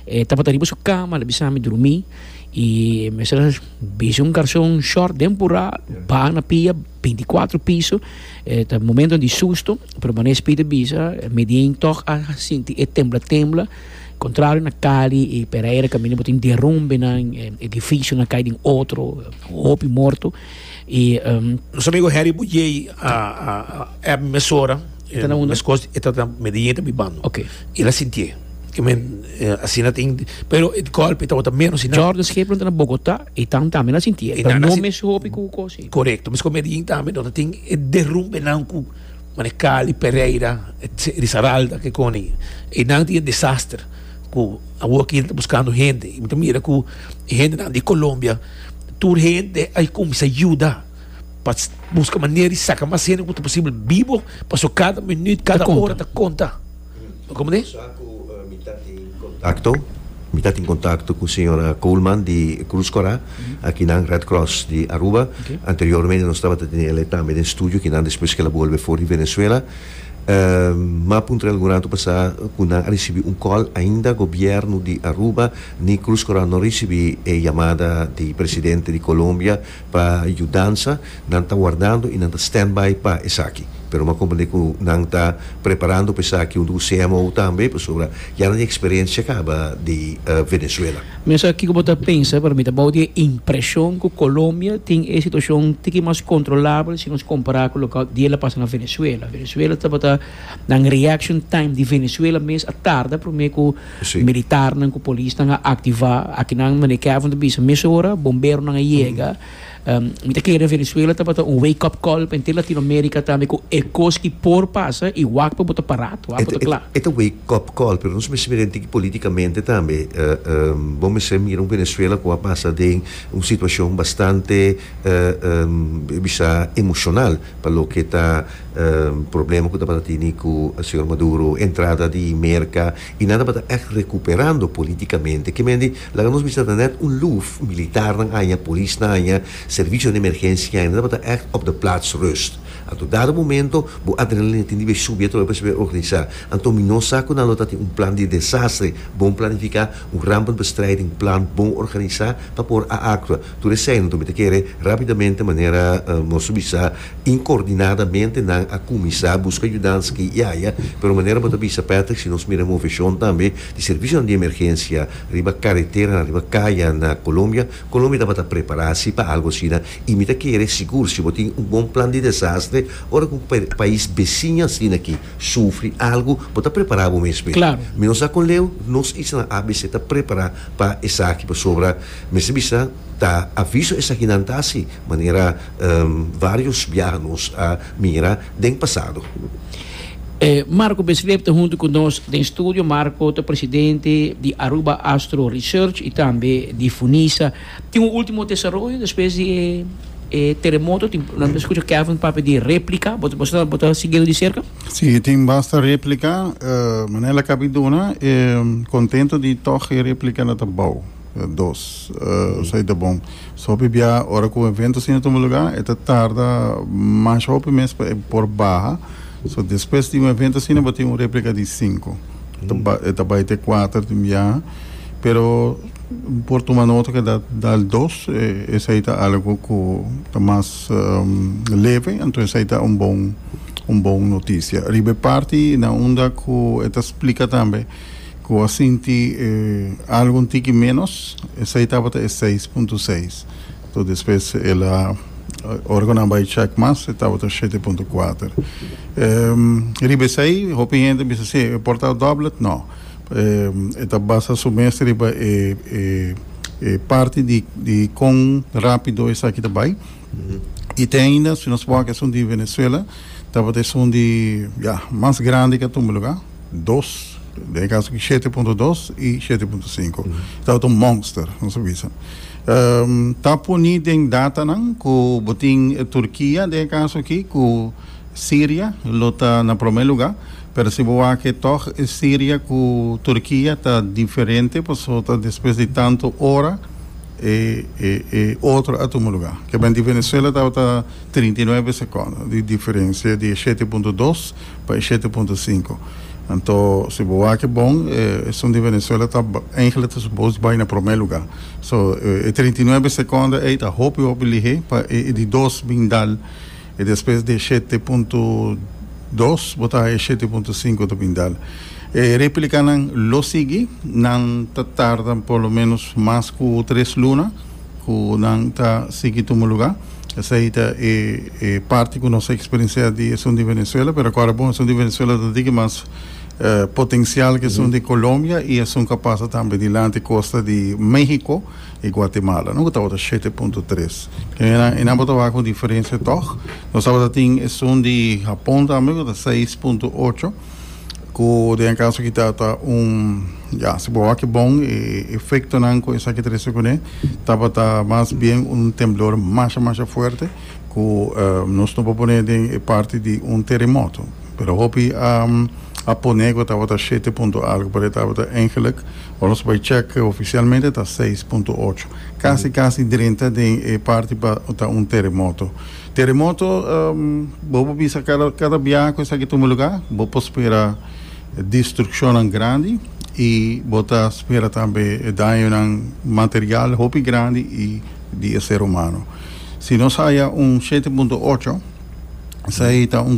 e tabata riba su cama la bisa mi durmi y mester bisa un garson short den pura bana pia Binticuatro piso eh ta momento di susto pero mane Speedy bisa Medien toch a sinti e tembla tembla contrario na Cali y Pereira ka mira bo tin derrumbenan edificio na cay den otro hopi morto y nos amigo Harry Bujey a a a app mesora e ta na unda? mescos e ta na Medien e ta biba no okay el a sintié kimen asina tin pero e golpe tabata menos y na Jordan Schip lo ta na Bogota. E tan tambe na sinti e ta no mes hopi ku kosi. Korekto, mes ku Medellín tambe no ta tin e derumbenan ku manera Cali, Pereira, Risaralda ke koni. E nan tin e desaster ku awo aki ta buskando hende i mi ta mira ku e hendenan di Colombia tur hende a kuminsá yuda pa buska manera di saka mas hende ku ta posibel bibo paso kada minüt, kada ora ta konta. Komo di? Sa ku mi ta tin kontakto? Mi ta tin kontakto ku señora Coleman di Cruz Cora, a kinan Red Cross di Aruba. Anteriormente nos tabata tene el'e tambe den studio, kinan despues ke el a bolbe for di Venezuela. M'a puntra algun ratu pasá ku nan a risibi un kòl, ainda gobièrnu di Aruba ni Cruz Cora no a risibi e yamada di presidente di Colombia Pa yudansa, nan ta wardando i nan ta standby pa esaki. Pero m'a komprendé ku nan ta preparando pa esaki huntu ku CMO tambe, pasobra ya nan tin eksperensia kaba di Venezuela. Mester kiko bo ta pensa, pero mi ta bou di e impreshon ku Kolombia tin e situashon tiki mas kontrolabel si nos kompará ku loke di el a pasa na Venezuela. Venezuela tabata na un reaction time di Venezuela mes a tarda promé ku. Militarnan ku polisnan a aktivá akinan, Mane Kevin ta bisa, mesora bomberonan a yega. Mi ta kere Venezuela tabata un wake up call pa henter Latinoamerika tambe ku e kos ki por pasa i wak pa bo ta pará, wak pa bo ta kla. E ta wake up call pero nos mester mira entiki politikamente tambe. Bo mester mira un Venezuela ku a basa den un situashon bastante bisá emoshonal. Pa loke ta problema ku tabata tini ku señor Maduro, entrada di Merka i nan tabata ègt rekuperando politikamente. Ke mende, laga nos bisa ta nèt un luf, militarnan aña, polisnan aña, servisionan di emergensia aña, nan tabata ègt op de plaats rust. Anto dado momento bo adrenalina tin di bay subi atrobe pa sibi organisá. Anto mi no sa ku nan lo ta tin un plan di desastre bon planifiká, un rampenbestrijdingplan bon organisá pa por a aktua. Tur esei anto mi ta kere rapidamente manera nos a bisa inkordinadamente nan a kuminsá buska yudansa aki i aya, pero manera bo ta bisa Patrick si nos mira moveshon tambe di servisionan di emergensia riba kareteranan, riba kaya na Colombia, Colombia tabata prepará si pa algu asina i mi ta kere sigur si bo tin un bon plan di desastre ora ku un pais besiño asina aki sufri algu bo ta prepará bo mes. Claro. Mi no sa kon leu nos isla abc ta prepará pa esaki pasobra Mester bisa ta aviso esakinan ta hasi, manera varios biaha nos a mira den pasado. E Marco Besleb ta huntu ku nos den studio. Marco ta presidente di Aruba Astro Research i tambe di Funisa. Tin un ultimo desaroyo despues di e teremoto. Tin, nan ta skucha Kevin papia di replika. Bo ta bo ta siguindo di serka? Si, tin basta replika. Manera lak a bin duna, e kontentu di tòg e replika na ta bou. dos esei ta bon so hopi bia ora ku un evento asina tuma luga e ta tarda mash hopi mes pa e por baha so despues di un evento asina bo tin un replica di sinku e ta bai te kuater di miaha pero por tuma nota ke da dal dos esei ta algu ku ta mas leve anto esei ta un bon un bon notisia riba e parti na unda ku e ta splika tambe. Ku a sinti e algu un tiki ménos, esei tabata e seis punto seis. Toer despues el a, ora ku nan bai chèk mas, e tabata shete punto kuater. Riba esei, hopi hende a bisa, sí, e por ta dòblet? Nò. E ta basa su mes riba e parti di kon rápido esaki ta bai. I te ainda, si nos wak esun di Venezuela, tabata esun di, ya, mas grandi ke atumbe lugá, dos, den e kaso aki shete punto dos i shete punto sinku. Tabata un monster, nos a bisa. Um, ta poni den datanan ku bo tin Turkia, den e kaso aki, ku Siria lo ta na promé lugá, pero si bo wak e tòg, Siria ku Turkia ta diferente, pasobra ta despues di tantu ora E e e otro a tuma luga. Kebend di Venezuela tabata trinta i nuebe sekondo di diferensia di e shete punto dos pa e shete punto sinku. Anto si bo wak bon e esun di Venezuela ta eingele ta supos bai na prome luga. So e trinta i nuebe sekondo ei ta hopi hopi lihé pa e di dos bin dal. E despues di e shete punto dos bo ta haña e shete punto sinku ta bin dal. E replikanan lo sigui, nan ta tarda por lo menos mas ku tres luna ku nan ta sigui tuma lugá. Esei ta e e parti ku nos a eksperensiá di esun di Venezuela, pero akora bon esun di Venezuela ta diki mas potensial ke esun di Colombia i esun ka pasa tambe dilanti kosta di México. e Guatemala no ku tabata shete punto tres kenenan e nambra tabata ku diferensia tog nos tabata tin esun di Hapon tambe ku ta seis punto ocho ku den e kaso aki ta un ya si bo wak bon e efektonan ku esaki ta rese kuné tabata mas bien un temblor masha masha fuerte ku nos no por pone den e parti di un teremoto pero hopi a poné ku tabata shete punto algu pasobra tabata engeluk. Ora nos bai chèk, ofisialmente ta seis punto ocho. Kasi kasi drenta den e parti pa ta un teremoto. Teremoto, bo por bisa kada kada biaha ku esaki tuma lugá bo por spera destrukshonnan grandi i bo ta spera tambe e dañonan material hopi grandi i di e ser humano. Si nos haya un shete punto ocho esei ta un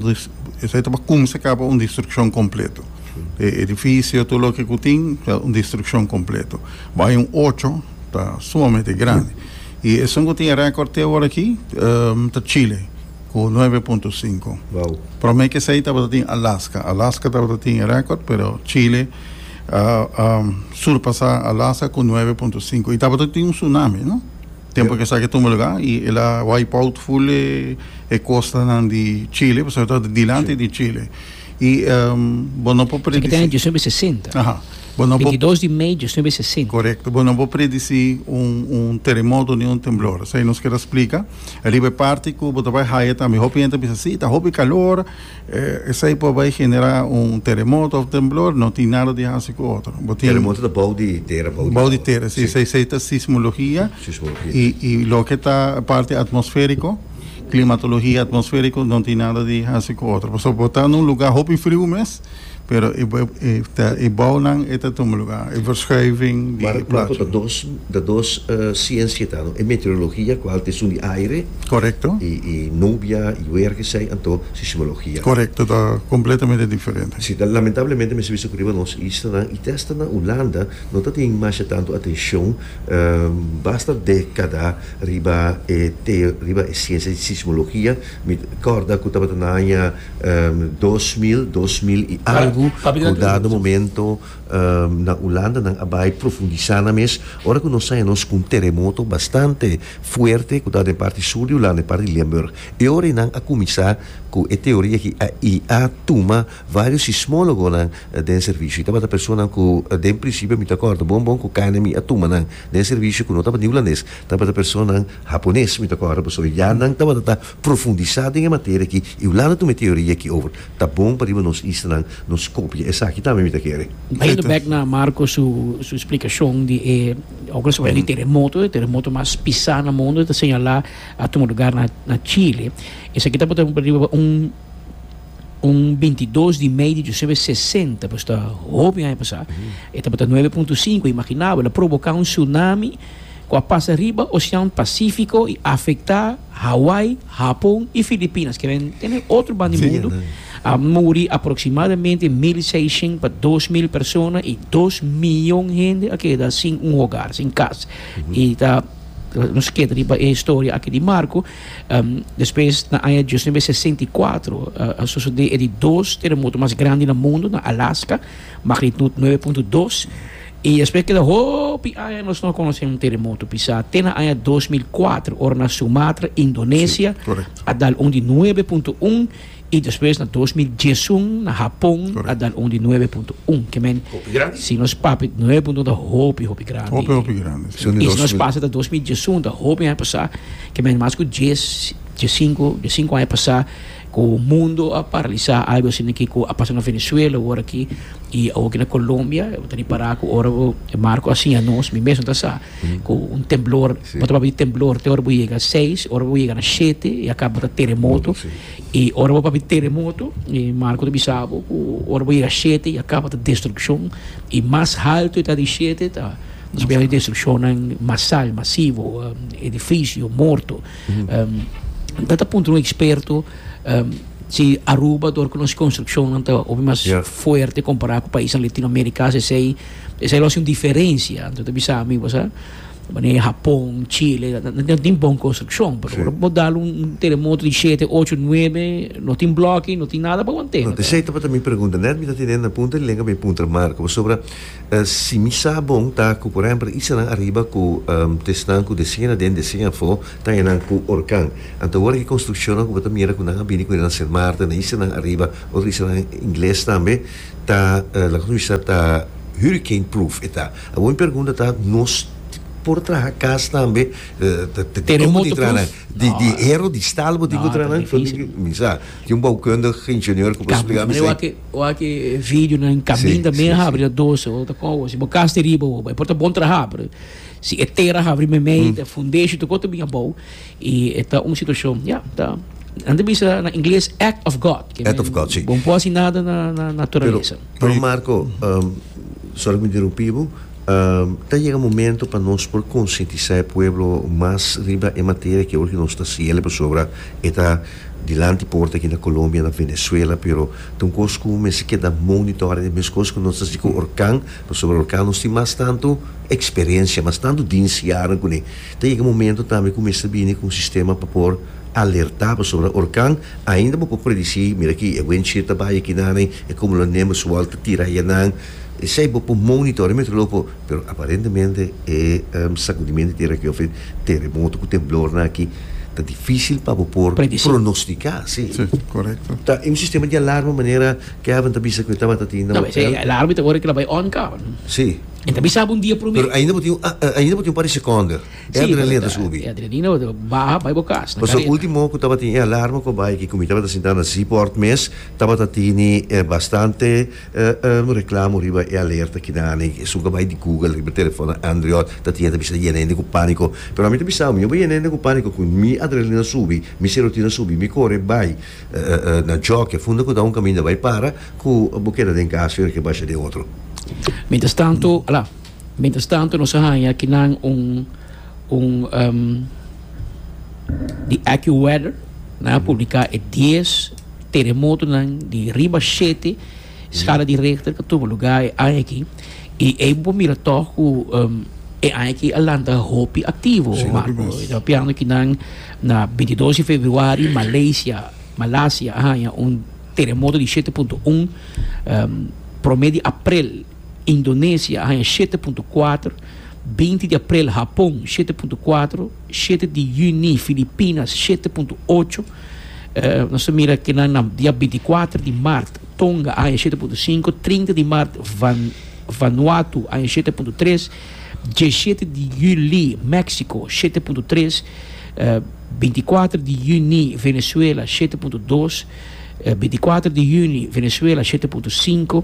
esei ta pa kumsa kaba un destrukshon kompleto. E edifisio, tur loke ku tin, ta un destrukshon kompleto. Bai un ocho, ta sumamente grandi. I esun ku tin e rèkòrt te ora aki, ta Chile ku nuebe punto sinku. Promé kesei tabata tin Alaska. Alaska tabata tin e rèkòrt, pero Chile a surpasá Alaska ku nuebe punto sinku. I tabata tin un tsunami, no? Tempu ku esaki a tuma lugá i el a wipe out full e kostanan di Chile, pasobra e tabata dilanti di Chile. Y bo no por predicir. Eso qui'tene diecinuebe sesenta. Aha. Bo no por. Veintidos di mei diecinuebe sesenta. Correcto. Bo no por predicir un terremoto ni un temblor. Esei nos kier a splica. Riba e parti cu bo ta bay haya tambe. Hopi hende ta bisa si ta hopi calor esei por bay genera un terremoto of temblor. No tin nada di hasi cu otro. Bo tin. Terremoto ta bou di tera. Bou di tera si. Esei ta sismologia. Sismologia. Y loke ta parti atmosferico. Klimatologia atmosfériko no tin nada di hasi ku otro. Pasobra bo ta na un lugá hopi friu mes, pero e bounan e ta tuma lugá, e verschuiving di plato. Mar Blanko ta dos, ta dos siensia ta, no? E meteorologia ku haltu esun di aire. Korekto. I nubia i wer kesei, anto sismologia. Korekto, ta kompletamente diferente. Si, ta lamentablemente mester bisa ku riba nos islanan i testa na Hulanda no ta tin masha tantu atenshon, basta dekada. Riba e teo, riba e siensia di sismologia, mi kòrda ku tabata na aña dos mil, dos mil i algu, ku un dado momento na Ulanda nan a bai profundisá nan mes, ora ku nos sa nos ku un teremoto bastante fuerte ku ta den parti sur di Ulanda, den parti di Limburg. E ora ei nan a kuminsá ku e teoria aki i a tuma vários sismólogonan den servisio. Tabata personanan ku den prinsipio mi ta kòrda bon bon ku KNMI a tuma nan. Den servisio ku no tabata ni hulandes, tabata personanan hapones, mi ta kòrda boso. Ya nan tabata ta profundisá den e materia akí i Hulanda tuma e teoria akí over. Ta bon pa riba nos istanan nos kopia esaki tambe, mi ta kere. Trayendo bek na Marco su splikashon di e ora su hablá di teremoto, e teremoto mas pisá na mundu ta señalá a tuma lugá na Chile. Esaki ta pone riba un. un binti dos di mei di José e sesenta pues ta hopi aña pasá e tabata nuebe punto sinku imaginá bo el a provoká un tsunami ku a pasa riba osean pasífiko i afektá Hawai Hapon i Filipinas ke nan tene otro banda di mundu a muri aproksimadamente mil i seishent pa dos mil persona i dos miyon hende a keda sin un hogar sin kas i ta nos keda riba e historia aki di Marko. Um, despues, na aña dios nueve sesenta i kuater, a sosodé e di dos teremoto mas grandi na mundu, na Alaska, magnitud nueve punto dos. I despues keda hopi aña nos no a konosé un teremoto pisá, te na aña dos mil kuater, ora na Sumatra, Indonesia, a dal un di nueve punto un. I despues na dos mil diesun na Hapon a dar un di nuebe punto un ke men si nos papia di nuebe punto un ta hopi hopi grandi so i si nos pasa ta dos mil diesun ta hopi aña pasa ke men mas ku dies die sinku die sinku aña pasa ku mundo a paralisa algu asina aki ku a pasa na Venezuela awor aki i awor aki na Colombia ta ripara ku ora ku Marco a siña nos mi mes no ta sa. ku un temblor bo ta papia temblor te ora bo yega na seis ora bo yega na shete i a kaba ta teremoto i ora bo papia teremoto i Marco ta bisa bo ku ora bo yega na shete i a kaba ta destrukshon i mas haltu e ta di shete ta nos a bira di destrukshonan masal masivo edifisio morto mi ta ta puntra un eksperto si Aruba dor ku nos konstrukshonnan ta hopi mas fuerte kompará ku paisnan Latinoamerika a si esei Esei lo hasi un diferensia, anto ta bisa mi bo sa, manera Hapon, Chile, no tin bon konstrukshon, pero ora bo dal un teremoto di shete, ocho, nuebe, no tin bloki, no tin nada pa aguant'e. No, esei tabata mi pregunta, nèt mi ta tene na punta di lenga mi puntra Marco, pasobra si mi sa bon ta ku por ehèmpel isennan ariba ku tesnan ku desen aden, desen afó ta enan ku orkan. Anto awor e konstrukshonnan ku bo ta mira ku nan a bini ku enan ser marter, na isennan ariba, otro isennan ingles tambe, Ta loke nos bisa ta hurricane proof e ta awor mi pergunta ta nos por traha cas tambe terremoto proof di hero di staal bo tin ku traha nan pasobra ki mi sa tin un boukundig ingenieur ku por spliká mi esei e wak e video nan kaminda mi a habri a doce o ta kon awor si bo cas ta riba awor bai por ta bon traha pero si e tera habri meimei ta fundation ta kon ta bin abou. I e ta un situashon, ya, ta, nan ta bisa na ingles act of God. Act of God, si. Bo no por hasi nada na naturalesa. Pero, Marco, sòri ku mi interumpí bo, ta yega momento pa nos por konsientisá e pueblo mas riba e materia ke ora ku nos ta hasiel, pasobra e ta dilanti por aki na Colombia, na Venezuela, pero ta un kos ku mester keda monitorea, e mes kos ku nos ta hasi ku Orkan, pasobra Orkan nos tin mas tantu eksperensia, mas tantu diensianan kuné. Ta yega momento tambe ku mester bini ku un sistema pa por alertá pasobra orkan ainda bo por predisí, mira aki e wendshir ta bai aki nan ei, e kumulonember su wòl ta tira aya nan, esei bo por monitor'é metrológ por, pero aparentemente e sakudimentu di tera aki òf e teremoto ku temblor nan aki ta difísil pa bo por pronostiká, si. Sí, korekto. Ta e un sistema di alarma manera Kevin ta bisa ku e tabata tin na hotel. Esei alarma ta wòrdu klaba ei on ka. Sí. E ta bisa bo un dia promé. Pero ainda bo tin un ainda bo tin un par di sekonder. E adrenalina ta subi. E adrenalina ta baha bai bo kas na kareta. Pasobra ultimo ku tabatin e alarma ku a bai aki ku mi tabata sintá na Seaport mes tabata tini bastante reklamo riba e alerta akinami. Esun ku a bai di Google riba e telefonnan andriot ta tin e ta bisa yena hende ku pániko. Pero ami ta bisa bo mi no bai yena hende ku pániko ku mi adrenalina a subi, mi serotina a subi, mi kore bai Na joke funda ku ta un kaminda bai para ku bo keda den kas riba ke basha den otro. Mientras tanto, ala, mientras tanto nos a haña aki nan un un um, di AccuWeather, nan a publica e dies teremotonan di riba shete Skala di rechter ta tuma lugá e aña aki i ey bo mira tog ku e aña aki a lanta hopi aktivo, Marco. E ta pianga ku nan na binti dos di februari Malaysia, Malasia, a haña un teremoto di shete punto un. Prome di aprel Indonesia a haña shete punto kuater, binti di aprel Hapon shete punto kuater, Shete di yüni, Filipinas, shete punto ocho. Nos ta mira kinan nan dia binticuater di mart, Tonga, aña shete punto sinku, trinta di mart, Van, Vanuatu, aña shete punto tres, dieshete di yüli, México, shete punto tres, binticuater di yüni, Venezuela, shete punto dos, binticuater di yüni, Venezuela, shete punto sinku.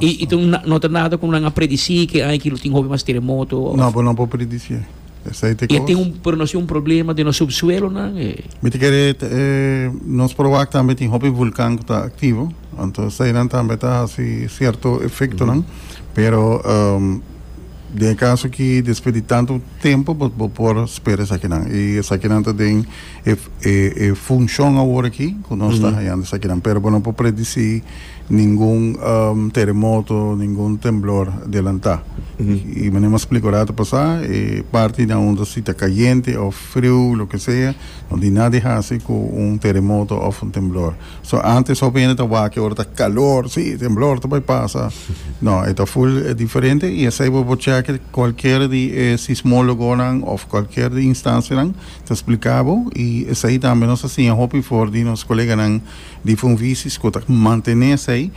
Y tin un no ta nada cu nan a predicir que aña kilo tin hopi mas teremoto of. No, pero no por predicié. Esai ta e cos. E tin un, pero no si un problema den nos subsuelonan? E. Mi ta kere nos proba aki tambe tin hopi vulcan cu ta activo, anto esainan tambe ta haci cierto efectonan, pero den e caso aki despues di tanto tempo bo por spera esakinan. Y esakinan ta den. E funshon awor aki ku nos ta hayando esakinan, pero bo no por predisí ningun teremoto, ningun temblor delantá. I manera mas splika ora ta pasá, e parti na unda si ta kayente òf friu, loke sea, no tin nada di hasi ku un teremoto òf un temblor. So, ántes hopi hende ta wak ke ora ta kalor, sí, temblor ta bai pasa. No, e ta full diferente i esei bo por chèk kualker di e sismólogonan òf kualker di instansianan. Ta spliká bo i esei tambe nos ta siña hopi for di nos koleganan di Funvisis ku ta mantené esei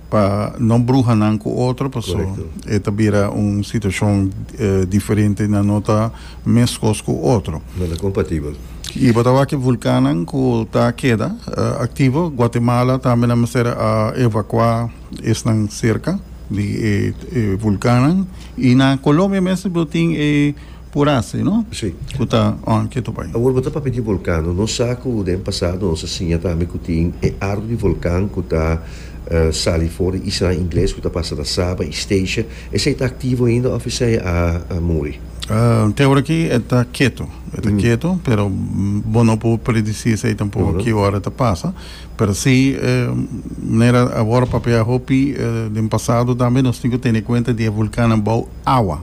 pa no bruha nan ku otro paso e ta bira un situashon diferente nan no ta meskos ku otro. No ta kompatibel. I bo ta wak vulkannan ku ta keda aktivo. Guatemala tambe na mester a evakuá esnan serka di e vulkannan. I na Colombia mes bo tin e Purasa i no? Sí. Ku ta on ke topa ahí. Awor bo ta papia di volkan no? Nos sa ku den pasado nos a siña tambe ku tin e ardu di volkan ku ta sali for di isla Ingles ku ta pasa na Saba i Statia. Esei ta aktivo ainda òf esei a muri? Te ora aki e ta ketu. E ta ketu pero bo no por predisí esei tampoko ki ora e ta pasa. Pero sí manera awor a papia hopi den pasado tambe nos tin ku tene kuenta di e volkannan bou awa.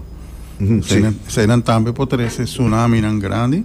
Eseinan tambe por trece tsunaminan grandi